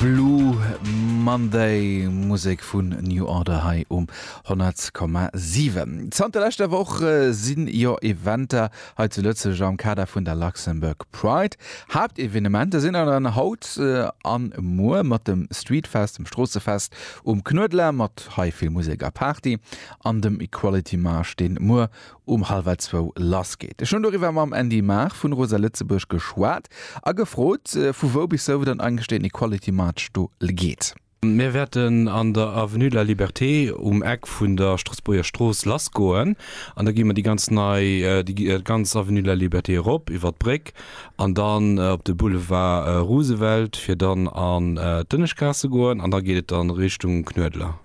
Blue Monday, Musek vun New Order hei um 100,7. Zanter leschter Woch si jo Eventer hei zu Lëtzebuerg am Kader vun der Luxembourg Pride. Haaptevenementer sinn awer dann haut an muer mat dem Streetfest, dem Stroossefest um Knuedler mat hei vill Musek a Party an dem Equality Marsch, deen muer um hallwer zwou lass geet. Ech hunn doriwwer mam Andy Maag vun Rosa Lëtzebuerg geschwat a gefrot, vu wou bis wou dann eigentlech deen Equality March do geet. Mir wäerten an der Avenue de la Liberté um Eck vun der Stroossbuerger Strooss lass goen an da gi mer déi ganz nei, déi ganz Avenue de la Liberté erop iwwer d'Bréck an dann op de Boulevard Roosevelt, fir dann an d'Dënneschgaass ze goen an da geet et dann Richtung Knuedler.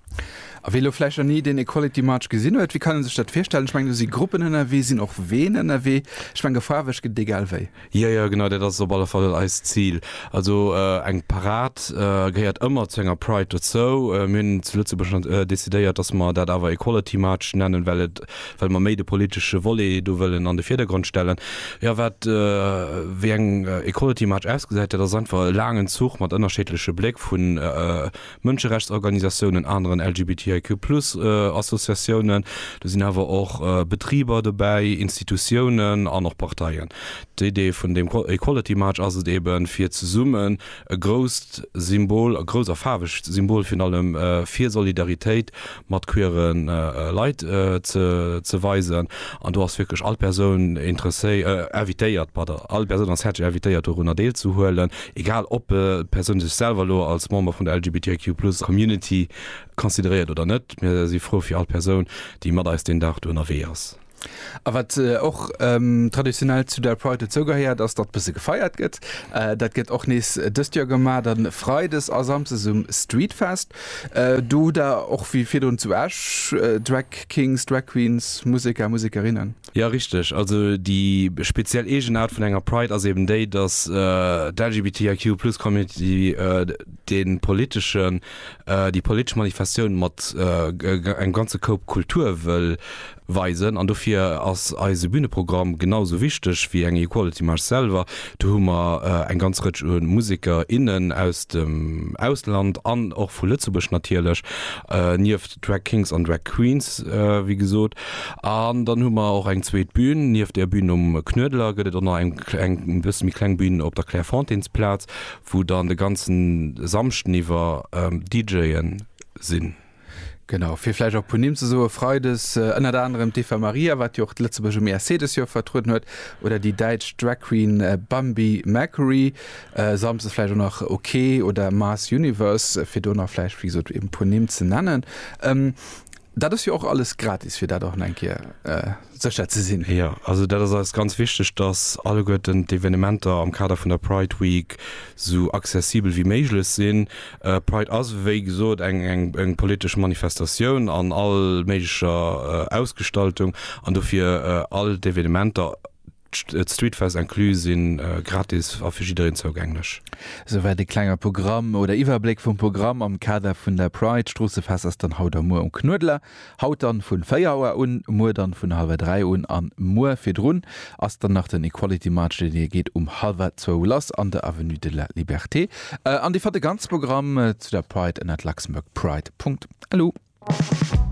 A wee elo vläicht nach ni deen Equality March gesinn huet, wéi kann e sech dat virstellen? Ech mengen, do si Gruppen ënnerwee, sinn och Ween ënnerwee. Ech mengen, e Faarweg gëtt et egal wéi. Jo, jo, genau dat ass et op alle Fall eist Zil. Also eng Parad gehéiert ëmmer zu enger Pride dozou. Mir hunn zu Lëtzebuerg decidéiert, dass mer dat awer Equality March nennen, well et, well mer méi de politesche Volet do wëllen an de Virdergrond stellen. Jo, wat, wéi eng Equality March ausgesäit, dat ass einfach e laangen Zuch mat ënnerscheedleche Bléck vun Mënscherechtsorganisatiounen, aneren LGBTIQ plus Associatiounen, do sinn awer och Betriber dobäi, Institutiounen an och Parteien. D'Idee vun deem Equality March ass et eben, fir zesummen e grousst Symbol, e grousst a faarwegt Symbol virun allem, fir Solidaritéit mat queere Leit ze weisen. An do ass wierklech all Persoun invitéiert, pardon, all Persoun ass häerzlech invitéiert dorunner deelzehuelen, egal ob d'Persoun sech selwer elo als Member vun der LGBTIQ plus Community consideréiert oder net. Mir si frou fir all Persoun, déi mat eis deen Dag do ënnerwee ass. A wat och traditionell zu der Pride dozougehéiert, ass datt e bësse gefeiert gëtt. Dat gëtt och nees dëst Joer gemaach, dann freides a samsdes um Streetfest. Do hutt der och wéi virdrun zu Esch Drag Kings, Drag Queens, Museker, Musekerinnen. Jo richteg, also déi speziell Eegenaart vun enger Pride ass eben déi, datt d'LGBTIQ plus Community de politeschen, déi politesch Manifestatioun mat engem ganze Koup Kultur wëll Weisen an dofir ass eise Büneprogramm genau sou wichteg wéi eng Equality March selwer. Do hu mer eng ganz Rëtsch u Museker, innen aus dem Ausland an och vu Lëtzebuerg natierlech, nieft Drag Kings an Drag Queens wéi gesot. An dann hu mer och eng zweet Bün, nieft der Bün um Knuedler gëtt et och nach eng e bësse méi kleng Bün op der Clairefontaines-Plaz, wou dann de ganze Samschden iwwer DJe sinn. Genau, fir vläicht och e puer Nimm ze soen, Freides ënnert anerem d'Eva Maria, wat jo och d'Lëtzebuerg um ESC dës Joer vertrueden huet, oder déi däitsch Drag Queen Bambi Mercury, samsdes vläicht och nach OK oder Mass Universe, fir do nach vläicht, wéi gesot, e puer Nimm ze nennen. Dat ass jo och alles gratis, fir dat och nach eng Kéier. sécher ze sinn. Jo, also dat ass eis ganz wichteg, dass alleguerten d'Evenementer am Kader vun der Pride Week esou accessibel wéi méiglech sinn. Pride ass, wéi gesot, eng politesch Manifestatioun an all méiglecher Ausgestaltung an dofir all d'Evenementer, D'Streetfest inclus si gratis a fir jiddereen zougänglech. Souwäit e klenger Programm oder Iwwerbléck vum Programm am Kader vun der Pride. D'Stroossefest ass dann haut a muer um Knuedler. Haut dann vun 4 Auer un, muer dann vun halwer 3 un an muer virdrun ass dann nach den Equality March, deen hie geet um halwer 2 lass an der Avenue de la Liberté. An dir fannt de ganze Programm zu der Pride ënnert luxembourgpride.lu.